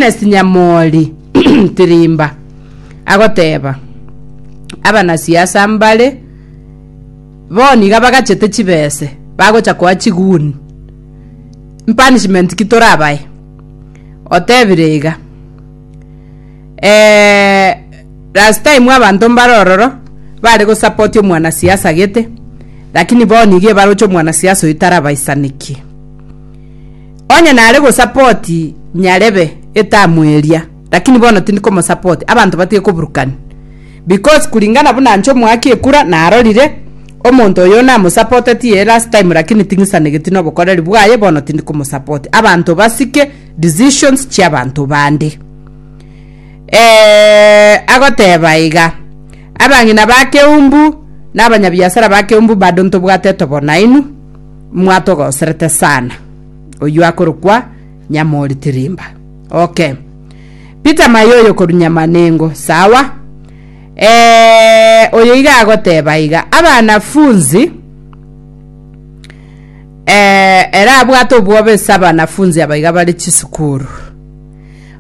Ernest Nyamori Tirimba agoteba, Abanasiasa mbare bono niga bagachete chibese bagocha koa chiguni. Mpunishment ki torabae? Otebire iga, eh, last time abanto mbare ororo bare gosupport omwanasiasa gete, lakini bono nigo ebaroche omwanasiasa oyo tarabaisanekie. Onye nare gosapoti Nyarebe etamu eria, lakini bono tindi komosapoti, abanto batige koburukani. Because kuringana buna nche omoaki ekura narorire, omonto oyo namosapoteti eye last time lakini ting'isanegeti nobokoreri bwaye bono tindi komosapoti. Abanto basike decisions chiabanto bande. Eh, agoteba iga, abang'ina ba Keumbu na abanyabiasara ba Keumbu bado ntobwate tobonainu, mwatogoserete sana oywo akorokwa nyamori tirimba okay peter mayo oyo koru nyamanengo sawa eh, oyo iga agoteba iga abanafunzi eh, era abwate obwobe ase abanafunzi abaiga bare chisukuru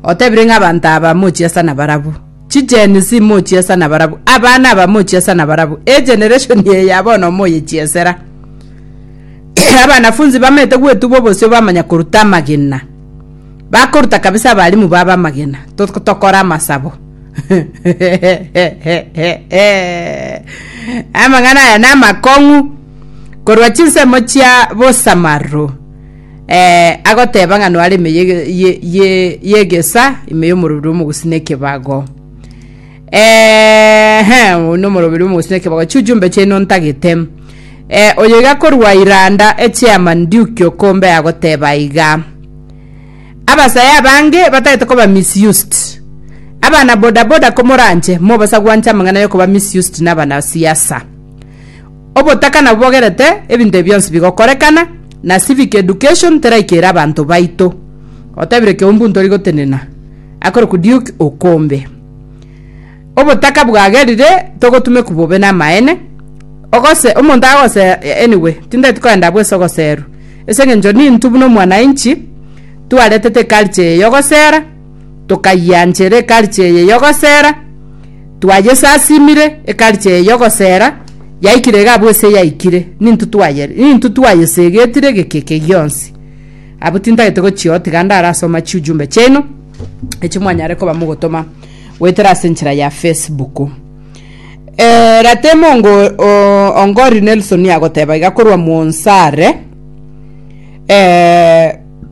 otebire ng'a abanto aba mochiasana barabwo Chigen Z mochiesa nabarabwo, abana aba mochiesa nabarabwo, egeneration eye ya bono moyechiesera. Abanafunzi bamanyete gwetubwa obosio bamanya koruta amagena. Bakoruta kabisa abalimu baba amagena. Tok- Tokore amasabo. Amang'ana aya namakong'u korwa chinsemo chia bosamaro. eh, agoteba ng'a noare ime ye- ye- ye- yegesa ime y'omorobiri omogusii na ekebago ehe oyino omorobiri omogusii na ekebago chiu chiumbe chiaino ntagete eh, oyo iga korwa iranda echiamani ndiuki okombe agoteba iga abasaya abange batagete koba misused abana bodaboda komoranche mobasaguanche amang'ana yokoba misused na abana siasa Obotaka nabubogerete ebinto ebi bionsi bigokorekana, na civic education teraikera abanto baito. Otebire Keumbu ntori gotenena. Akorokwa Duke Okombe. Obotaka bwagerire togotumeku bobe namaene. Ogose omonto agose anyway tindeti koenda bwesa ogoserwa. Ase engencho nintu buna omwanainchi twaretete culture eye yogosera tokayianchera ekarichi eye y'ogosera, twayesasimire ekarichi eye y'ogosera, yaikire iga abwo ase yaikire, nintwe twayere nintwe twayesegetire egekeke gionsi. Abwo tintagete gochia otiga ndare asoma chiujumbe chiaino, echi mwanyare koba mogotoma goetera ase enchera ya Facebook. Eh, ratemo ongo o- ongori Nelson agoteba iga korwa Mwonsare, eh,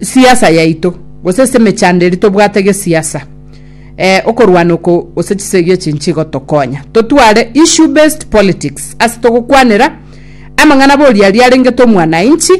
siasa yaito gose ase emechando eria tobwate gesiasa okorwana oko gose chisegi echi nchigotokonya totware issue based politics ase togokwanera amang'ana bori aria arengete omwanainchi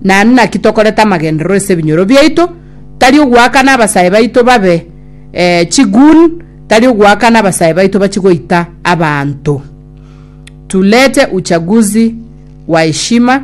naende naki tokorete amagenderero ase ebinyoro biaito tari ogoakana abasae baito babe chigoon tari ogoakana abasae baito bachie goita abanto tulete uchaguzi wa heshima.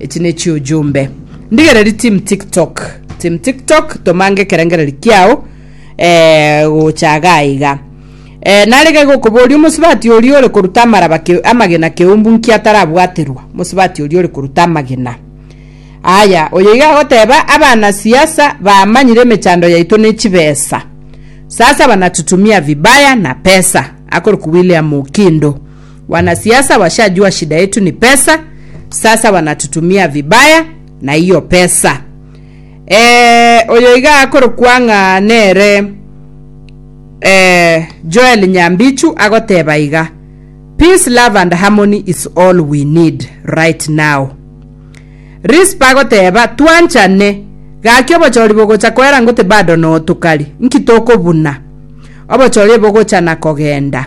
Echi ne chiujumbe. Ndigereri team tiktok. Team tiktok tomange ekerengereri kiao eh, gocha iga iga. Eh, narege gokoboria omosibati oria ore koruta amaraba ke, amagena keumbu nki atarabwaterwa mosibati oria ore koruta amagena aya oyo iga agoteba abana siasa bamanyire emechando yaito ne chibesa sasa banatutumia vibaya na pesa akorokwa william okindo Wanasiasa washajua shida yetu ni pesa, sasa wanatutumia vibaya na hiyo pesa. Eh, oyo iga akorokwa ng'a nere eh, Joel Nyambichu agoteba iga, peace, love and harmony is all we need right now. Rispa agoteba twanchane gaki obochori bogocha koera ngote bado notokari nki tokobuna obochori bogocha na kogenda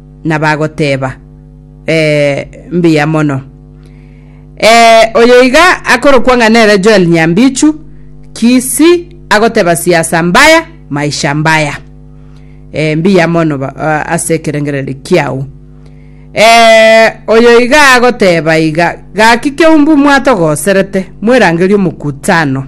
na bagoteeba, Ee, mbuya mono. Ee, oyo iga akorokwa ng'a nere Joel Nyambichu, Kisii, agoteeba siasa mbaya, maisha mbaya. Ee, mbuya mono ba- a- ase ekerengererio kiao. Ee, oyo iga agoteeba iga, Gaki keumbu mwatogoserete, mwerangerie omokutano.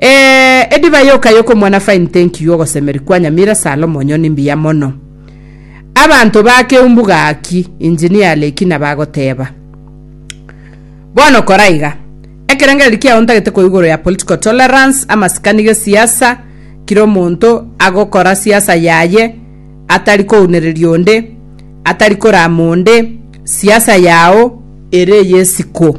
Eeh edivai okayo komwana fine thank you ogosemeri kwa nyamira salomo onyo ni mbuya mono abanto bakeumbu gaki engineer leki nabagoteba bono kora iga ekerengereri kiao ntagete ko igoro ya political tolerance amasikani gesiasa kira omonto agokora siasa yaye atari kounereria onde atari korama onde siasa yao ere yesiko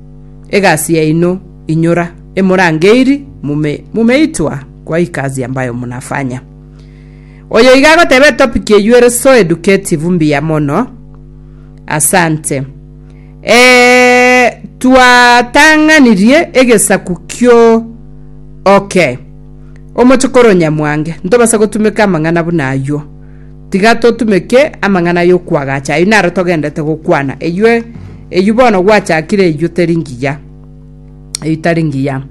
egasi yaino inyora emorangeri mume mumeitwa kwa ikazi ambayo munafanya. Oyo iga agotebe topic eywo ere so educative mbuya mono. Asante. Eh, twatang'anirie egesaku kio okay. Omochokoro Nyamwange, ntobasa gotumeka amang'ana buna aywo. Tiga totumeke amang'ana y'okwagacha ayio naro togenderete gokwana, eyio eyio bono gwachakire eyio teri ngiya, eyio tari ngiya.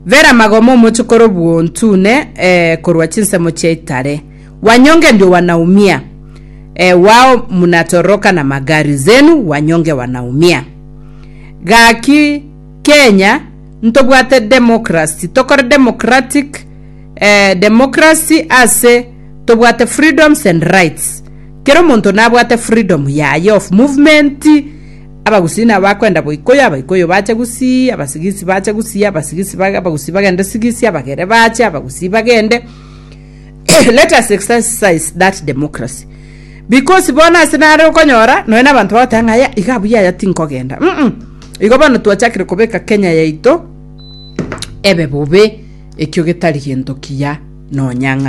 Vera magoma omochokoro bw'ontune eh, korwa chinsemo chia itare, wanyonge ndio wanaumia eh, wao munatoroka na magari zenu, wanyonge wanaumia. Gaki Kenya ntobwate democracy, tokore democratic democracy ase tobwate freedoms and rights kera omonto nabwate freedom yaye of movement abagusii nabo bakwenda boikoyo abaikoyo bache gusii abasigisi bache gusii abasigisi abagusii bagende sigisi abagere bache abagusii bagende let us exercise that democracy because bono ase nare okonyora nonya na abanto bagoteba ng'a aya iga buya aya tinkogenda mm igo bono twachakire kobeka kenya yaito. ebe bobe, ekio getari gento kiya nonya ng'a.